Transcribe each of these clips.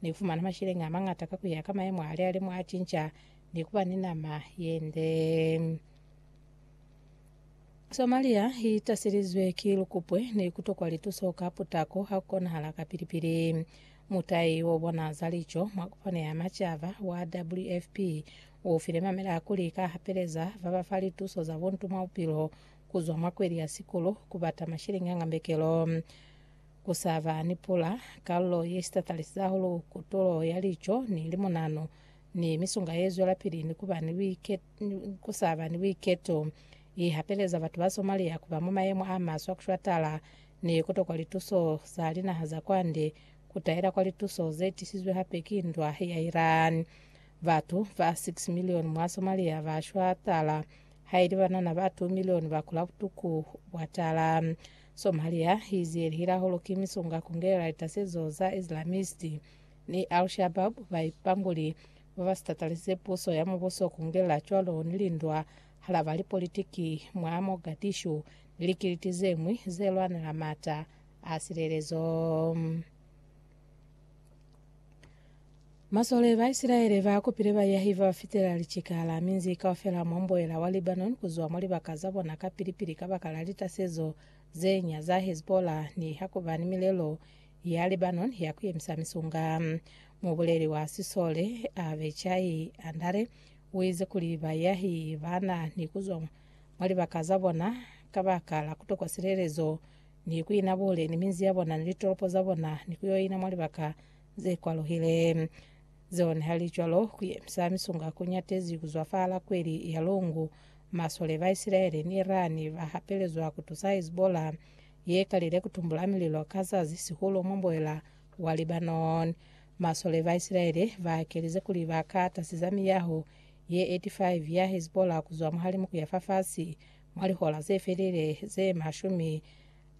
Ni fumana masheleñi amañata ka kuya ka mayemo a lialimo a cinca ni kuba ni nama yende. Somalia i taselizwe ki lukupwe ni kutokwa lituso ka putako ha ku konahala ka pili-pili. Mutai o bona za lico mwa kopano ya macaba wa WFP u file mamela kuli ka hapeleza ba ba fa lituso za buntu mwa bupilo kuzwa mwa kweli ya sikulu ku bata masheleñi a ngambekelo. Ku sa ba ni pula, kalulo ye sitatalizi hahulu kutulo ya lico ni limunanu ni misunga ye zwelapili ni ku ba ni buiketo, ku sa ba ni buiketo, i hapeleza batu ba Somalia ku ba mwa mayemo a maswe a ku shwatala ni ku tokwa lituso za linaha za kwande, ku taela kwa lituso ze tisizwe hape ki ndwa ya Iran. Batu ba 6 milioni mwa Somalia ba shwatala, ha ili banana ba 2 milioni ba kula butuku bwa tala. Somalia i ziyelihile hahulu ki misunga ku ngelela litasezo za Islamist ni Al Shabaab, baipambuli ba ba sitatalisise puso ya mubuso ku ngelela cwalo ni lindwa halaba lipolitiki mwa Mogadishu ni likiliti ze ñwi ze lwanela m'ata a silelezo. Masole ba Isilaele ba kopile bayahi ba fitela licikala minzi kaufela mwa mboela wa Lebanon ku zwa mwa libaka za bona kapili-pili kabaka la litasezo ze nya za Hezbollah ni ha ku ba ni milelo ya Lebanon ya ku yemisa misunga. Mubuleli wa sisole Avichai Andare u ize kuli bayahi ba na ni ku zwa mwa libaka za bona kabaka la ku tokwa silelezo ni ku ina bule ni minzi ya bona ni litolopo za bona, ni ku yo ina mwa libaka ze kwaluhile zeo. Nihalicwalo, ku yemisa misunga ku ñatezi ku zwafala kweli ya Lungu. Masole ba Isilaele ni Irani ba hapelezwa ku tusa Hezbollah, ye kalile ku tumbula mililo ka zazi, sihulu mwa mboela wa Lebanon. Masole ba Isilaele ba kelize kuli ba ka tasiza miyaho ye 85 ya Hezbollah ku zwa muhalimu ku ya fa fasi, Mwa lihola ze felile ze mashumi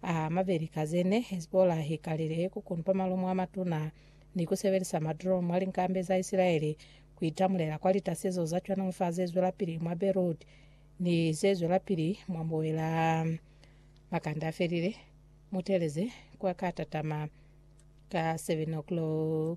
a mabeli ka ze ne, Hezbollah i kalile ku kunpa malumu a matuna ni ku sebelisa madrone mwa linkambe za Isilaele ku itamulela kwa litasezo za cwana fa ze zwelapili mwa Beirut ni ze zwelapili mwa mbuela. Makande a felile, mutelezi kwa ka tatama ka 7:00.